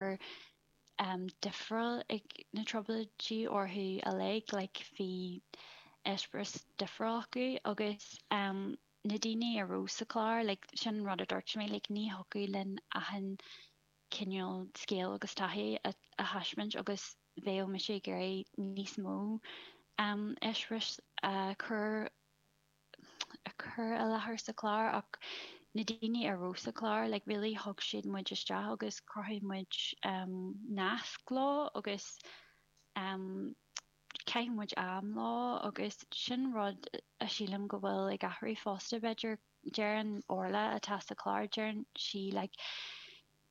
gur difriúil ag na Trioblóidí orthu uilig, like bhí eispéireas difriúil acu agus na daoine a rabh sa chlár, like sin an rud a dúirt mé, like ní thiocfadh linn achan cineál scéal agus taithí a thaispeáint agus bheadh mise ag iarraidh níos mó eispéiris a chur a chur i láthair sa chlár ach na daoine a rabh sa chlár, like really thug siad muid isteach agus chruthaigh muid nasc leo agus chaith muid am leo agus sin rud a sílim go bhfuil ag athrú fosta b'fhéidir, deireann Orla atá sa chlár, deireann sí like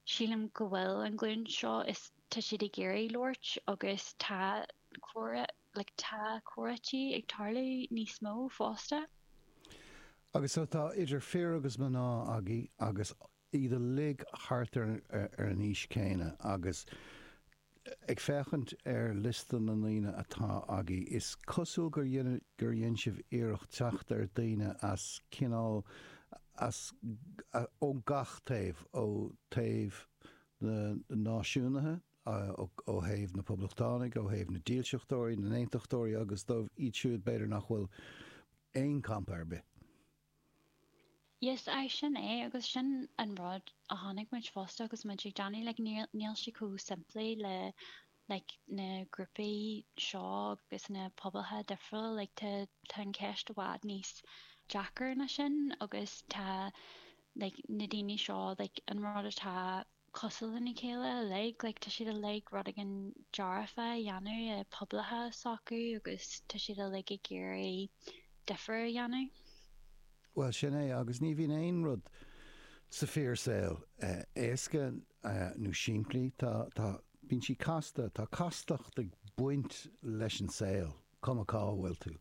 Sílim go bhfuil an ghlúin seo, like tá siad ag iarraidh labhairt agus tá like tá comhráití ag tarlú níos mó fosta. Agus tá idir fir agus mná agaibh agus iad uilig thart ar an aois chéanna agus Ag féachaint ar liosta na ndaoine atá agaibh, is cosúil gur gur dhein sibh iarracht teacht ar daoine as cineál as ó gach taobh, ó thaobh na náisiúnaithe, ó thaobh na poblachtánaigh, ó thaobh na dílseachtóirí, na n-aontachtóirí agus dóibh iad siúd b'fhéidir nach bhfuil aon campa ar bith. Yes, aye, sin é, agus sin an rud a chonaic muid fosta agus muid á dhéanamh, like, níl, níl sé chomh simplí le, like, na grúpaí seo agus na pobalacha difriúla, like, tá, tá an cheist i bhfad níos deacra ná sin agus tá, like, na daoine seo, like, an rud atá. cosúil lena chéile uilig, like tá siad uilig rud éigin dearfa a dhéanamh i pobalacha s'acu agus tá siad uilig ag iarraidh difear a dhéanamh. Bhuel, sin é, agus ní bhíonn aon rud sa fíor saol éasca nó simplí, tá, tá, bíonn sí casta, tá castacht ag baint leis an saol. cuma cá bhfuil tú.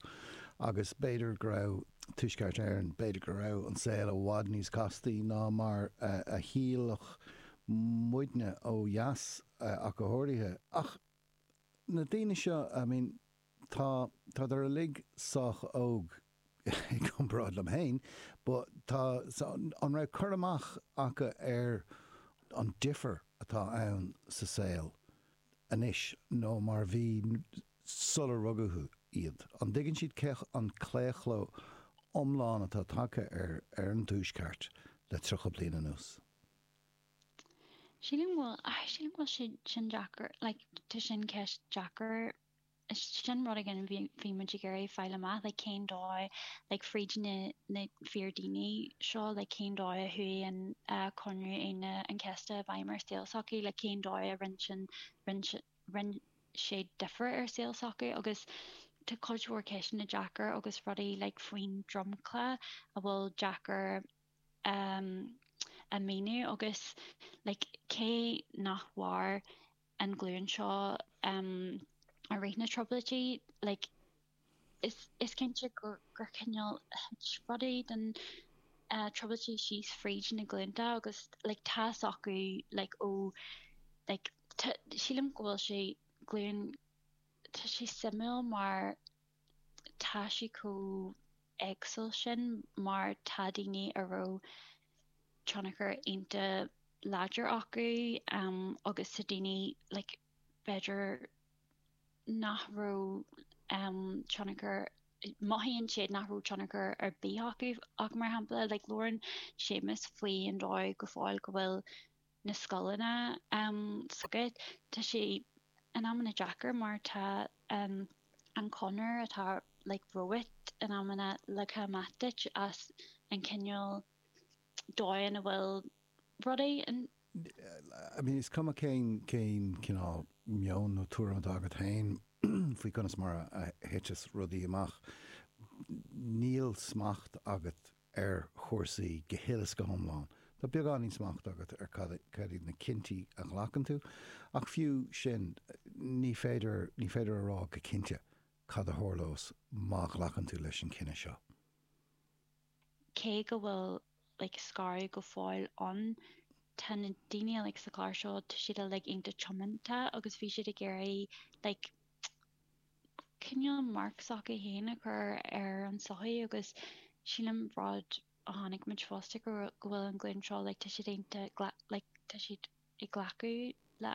Agus b'fhéidir go raibh Tuaisceart Éireann, b'fhéidir go raibh an saol i bhfad níos castaí ná mar a shílfeadh muidne ó dheas ach go háirithe. Ach na daoine seo, I mean, tá, tá siad uilig sách óg i gcomparáid liom féin, ba, tá, so, an raibh cur amach acu ar an difear atá ann sa saol anois nó mar bhí sular rugadh iad? An dtuigeann siad cé an claochló iomlán atá tagtha ar an Tuaisceart le tríocha bliain anuas? Sílim go bhfuil, sílim go bhfuil sin deacair, like, tá sin ceist deacair. Sin rud éigin a bhí muid ag iarraidh fáil amach, like, cén dóigh, like, fríd na fíordhaoine seo, like, cén dóigh a chuaigh an Comhaontú Aoine an Chéasta i bhfeidhm ar saol, sochaí, like, cén dóigh a rinn sé difear ar saol sochaí, agus tá cuid mhór ceisteanna deacair agus rudaí, like, faoin dromchla a bhfuil deacair a mhíniú, agus, like, cé nach mhair, an ghlúin seo i rith na Trioblóidí. Like, is, is cinnte gur, gur cineál, thuit rudaí den Trioblóidí síos fríd na glúnta agus, like, tá fhios acu, like, ó, like, tá, sílim go bhfuil sa ghlúin, tá sé suimiúil mar tá sé chomh éagsúil sin mar tá daoine a raibh, tionchar ionta láidir acu agus tá daoine, like, b'fhéidir nach raibh tionchar, mothaíonn siad nach raibh tionchar ar bith acu ach mar shampla, like, labhrann Séamus faoin dóigh go fóill go bhfuil na scoileanna scartha. Tá sé in amanna deacair mar tá an chonair atá like romhat in amanna leagtha amach duit as an cineál dóigheanna a bhfuil rudaí. I mean is cuma cén cineál meon nó tuairim atá agat féin faoi conas mar a thiteas rudaí amach, níl smacht agat ar chúrsaí go huile is go hiomlán. Tá beagán níos smacht agat ar cad iad na cinntí a ghlacann tú, ach fiú sin, ní féidir, ní féidir a rá go cinnte cad a tharlós má ghlacann tú leis an chinneadh seo. cé go bhfuil like scaradh go fóill ann, tá na daoine like sa chlár seo, tá siad uilig iontach tiomanta agus bhí siad ag iarraidh like, cineál marc s'acu féin a chur ar an sochaí agus sílim rud a chonaic muid fosta go bhfuil an ghlúin seo like tá siad iontach like tá siad ag glacadh le